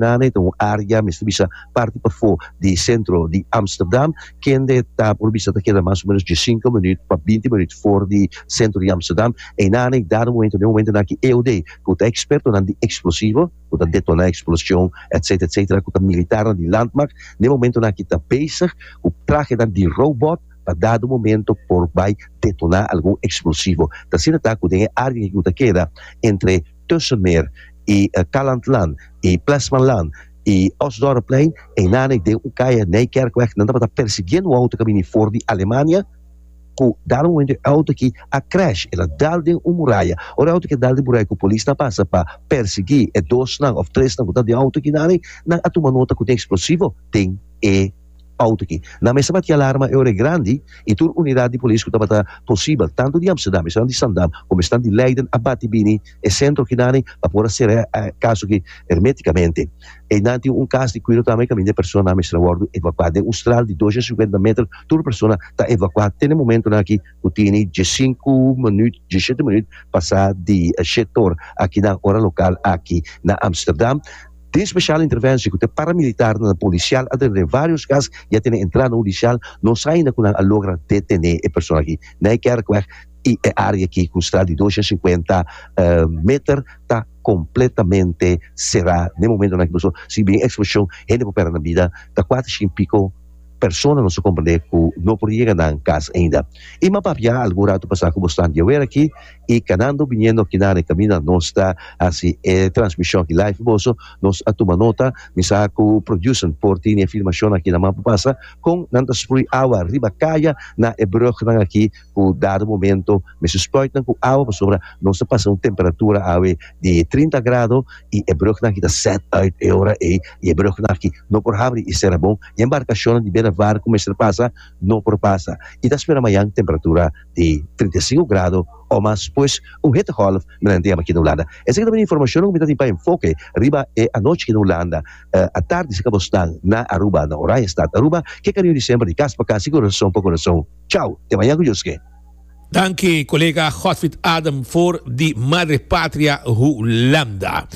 Name e ta un área, mester bisa parti pafó di sentro di Ámsterdam, kende ta por bisa ta keda mas o ménos diesinco minuut pa binti minuut for di sentro di Ámsterdam. E name dado momento den momentonan ki EOD ku ta ekspertonan di eksplosivo ku ta detoná eksplosion etcétera etcétera ku ta militarnan di landmacht den momentonan ki ta bezig ku trahenan di robot pa dado momento por bai detoná algun eksplosivo. Ta asina ta ku den e área ku ta keda entre Tussenmeer i Calandland i Plesmanland i Osdorpplein einane den un kaya Nijkerkweg nan tabata persiguiendo un auto kabini for di Alemania ku dado momento e auto aki a crash el a dal den un muraya ora e auto aki a dal den muraya ku polis nan pasa pa persiguí e dosnan òf tresnan ku ta den auto aki nan a tuma nota ku tin eksplosivo den e Auto aki na mester bati alarma e ora e grandi i tur unidad di polis ku tabata posibel tantu di Amsterdam esnan di Zaandam komo esnan di Leiden a bati bini e sentro akinami pa por a ser'é e kaso aki hermetikamente. Einan tin un kas di kuido tambe i kaminda e personanan mester a wòrdu evakuá. Den un stral di dos i sinkuenta meter tur persona ta evakuá te na momentunan aki ku tini diesinku minuut diesete minuut pasá di e shet ora aki na ora lokal aki na Amsterdam. Tin special interventie cu ta paramilitarnan na policial alredor den varios cas y a tene entrada hudicial, nos a ainda cu nan a logra detene e persona aki na e Kerkweg y e area aki cu straat di dos y cincuenta meter ta completamente cera den momento nan aki pasobra si bin e explosion hende por perde nan bida ta cuater shin pico. Persona nos a komprendé ku no por yega nan kas ainda. I ma papia algun ratu pasá ku bo stan di awer aki i kanando biniendo aki na Rekamina nos ta hasi e transmishon aki live pa boso. Nos a tuma nota, mi sa ku producer por tini e filmashonnan aki na man pa pasa kon nan ta sprui awa riba kaya na e brùgnan aki. ku dado momento mi su spruitnan ku awa pasobra nos ta pasa un temperatura awe di trinta grado i e brugnan aki ta sèt uit e ora ei i e brugnan aki no por habri i sera bon i e embarkashonnan di bera var ku mester pasa no por pasa i ta spera mañan temperatura di trinta i sinku grado o mas pues un hittegolf mi nan deba aki na Hulanda esaki ta bin e informashonnan ku mi ta tin pa enfoke riba e anochi aki na Hulanda atardi si kaba osnan na Aruba na Oranje stat Aruba ke kariño di semper di kas pa kas i kurason pa kurason. Chau, te maya cu Dios ke. Danki colega Godfrid Adam for di Madre Patria Hulanda.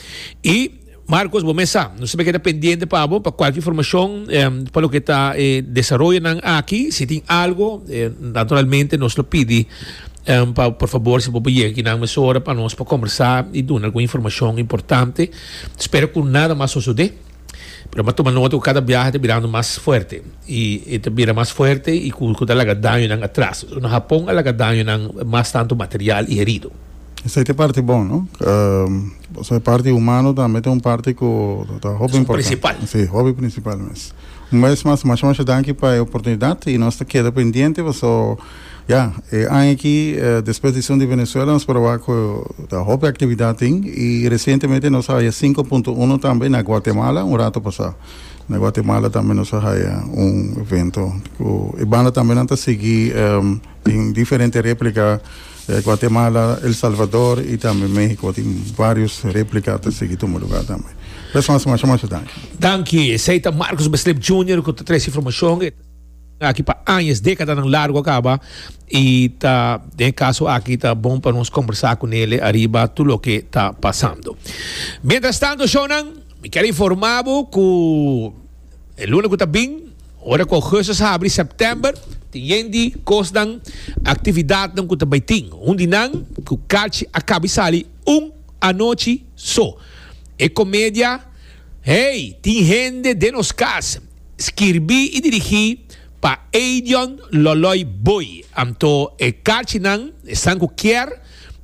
Y Marcos bo mesa nos ta keda pendiente pa bo pa cualki informacion pa loke ta e desaroyonan aki si tin algo naturalmente nos lo pidi pa por favor si bo por yega aki nan mesora pa nos por conversa y duna algun informacion importante spero cu nada mas sosode. Pero bo a tuma nota ku kada biaha ta birando mas fuerte i e ta bira mas fuerte i ku ku ta laga dañonan atras. Na Hapon a laga dañonan mas tantu material i herido. Esei ta e parti bon, no? Pasobra e parti humano tambe ta un parti ku ta hopi importante. Es un prinsipal. Si, hopi prinsipal mes. Un bes mas, masha masha danki pa e oportunidat i nos ta keda pendiente paso. Ya, e aña aki despues di esun di Venezuela nos proba cu ta hopi actividad tin y recientemente nos a haya cinco punto uno tambe na Guatemala un rato pasa. Na Guatemala tambe nos a haya un evento cu e banda tambe nan ta sigui den diferente replica Guatemala, El Salvador y tambe Mexico tin varios replica a ta sigui tuma lugar tambe. Res mas masha masha danki. Danki, esey ta Marcus Beslip Junior cu ta trae su informacion. Aki pa añas, dékadanan largu a kaba i ta den kaso aki ta bon pa nos kombersá ku Nele ariba tur loke ta pasando. Mientrastantu, shownan, mi kier informá bo ku e luna ku ta bin, ora ku Augustus a habri, September, tin yenti kosnan, aktividatnan ku ta bai tin. Un di nan ku kachi a kaba i sali un anochi so, e komedia Hey! Tin hende den nos kas. Skirbi i dirigí pa Eidion Loloi Booi. Anto e karchinan esnan ku kier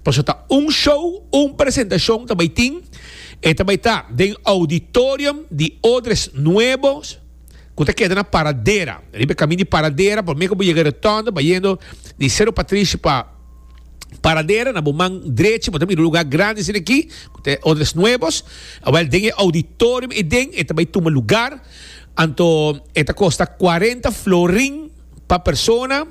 paso ta un show, un presentashon ta bai tin. E ta bai ta den ouditorium di Odres Nuebo ku ta keda na Paradera. Riba e kamin di Paradera, promé ku bo yega Rotonde bayendo di Cerro Patricio pa. Paradera na bo man drechi, bo ta mira un lugar grandi asina aki, cu ta e Odres Nuevos. Awel, den e auditorium ei den e ta bay tuma lugar. Anto e ta costa cuarenta florin pa persona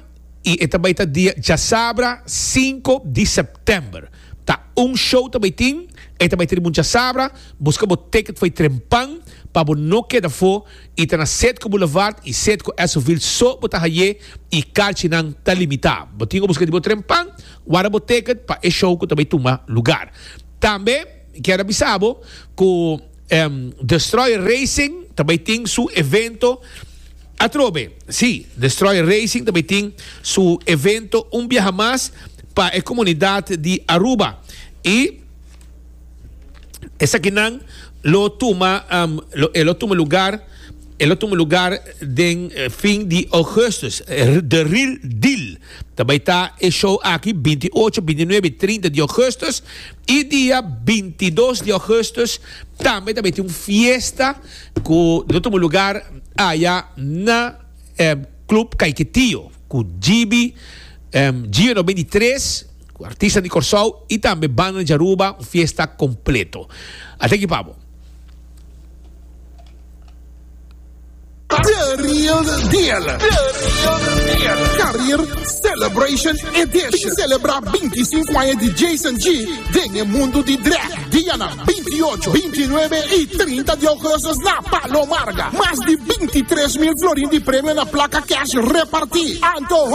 y e ta bay ta dia djasabra cinco di september. Ta un show ta bay tin, e ta bay ta di munchasabra. Busca bo ticket fo'i trempan pa bo no keda fo I ta na Setco Boulevard i Setco Esovil so bo ta haye i karchinan ta limita. Bo tin obuska di bo tren pan guarda bo teket pa e show ku ta bay tuma lugar. Tambe mi kier a bisa bo ku Destroyer Racing ta bay tin su evento atrobe. Si, Destroyer Racing ta bay tin su evento un biaha mas pa e komunidat di Aruba. I. esakinan lo tuma e lo tuma lugar e lo tuma lugar den fin di Augustus the real deal ta bai ta e show aki binti ocho binti nuebe y trinta di Augustus y dia binti dos di Augustus tambe ta bai tin un fiesta ku lo tuma lugar aya na club kaiketio ku GB Gio no bini tres Cu artista di Corsou y tambe banda di Aruba un fiesta completo. Ate aki pa bo. Diario Dial Carrier Celebration Edition Celebra binti i sinku aña di Jason G den e mundu di drag dianan binti i ocho, binti i nuebe i trinta di ougustus na Palo Marga. Mas di binti i tres mil florin di premio na plaka cash reparti. Anto.